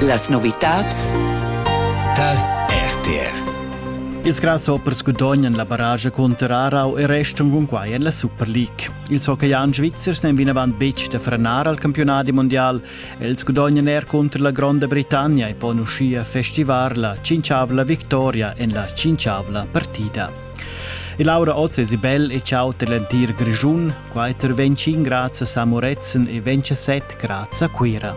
Las novitads tal RTR. Ils grasshoppers gudognan la barrage cunter Aarau e restan cun quai en la Super League. Ils hockeyan svizzers n'èn vinavant betg da frenar al campiunadi mondial. Els gudognan er cunter la Gronda Britannia e pon uschia festivar la cinciavla victoria en la cinciavla partida. E Laura Oz e Sibel e ciao dell'entir Grischun. Quai intervegn in grazia a Moretzen e vegn set grazia a Cuira.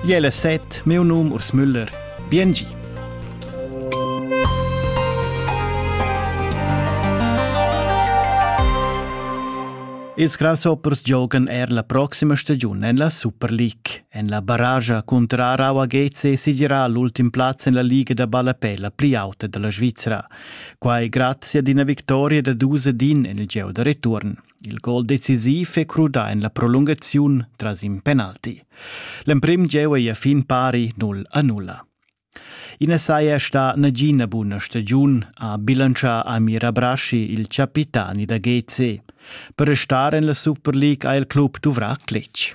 Jele set, meu num Urs Müller. Biengi. Ils grasshoppers giogan er la proxima stagiun en la Super League. En la barrage cuntra Rawa GC sigirà l'ultim plaz en la Liga da ballapè la pli auta da la Svizra. Quai grazia d'ina victoria da dus ed in en il gieu da return. Il gol decisiv è crudà en la prolungaziun tras in penalti. L'emprim gieu è a fin pari 0 a 0. Ina saja sta nagina buna stagiun, ha bilancià Amir Abraschi, il capitani da GC. Per restare en la Super League ha il club duvrà cletg.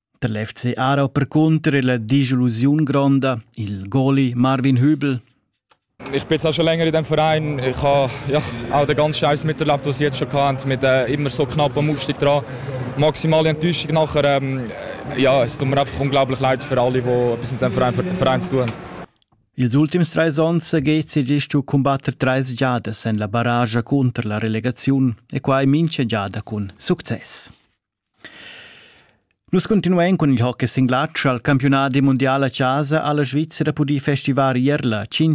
Der l'FC Aarau percunter illa dischillusiun gronda, il goli Marvin Hübel. Ich bin jetzt schon länger in diesem Verein. Ich habe ja, auch den ganzen Scheiß miterlebt, was sie jetzt schon hatten, mit äh, immer so knapp am Aufstieg dran. Maximale Enttäuschung nachher. Ähm, ja, es tut mir einfach unglaublich leid für alle, die etwas mit dem Verein, Verein zu tun haben. Ils ultims trais onns GCGist u cumbatter trais giadas en la barragia cunter la relegaziun e quai mincha giada cun success. Nus continuein cun il hockey singlatsch al campiunadi mundial a chasa ha la Svizra pudì festivar ier la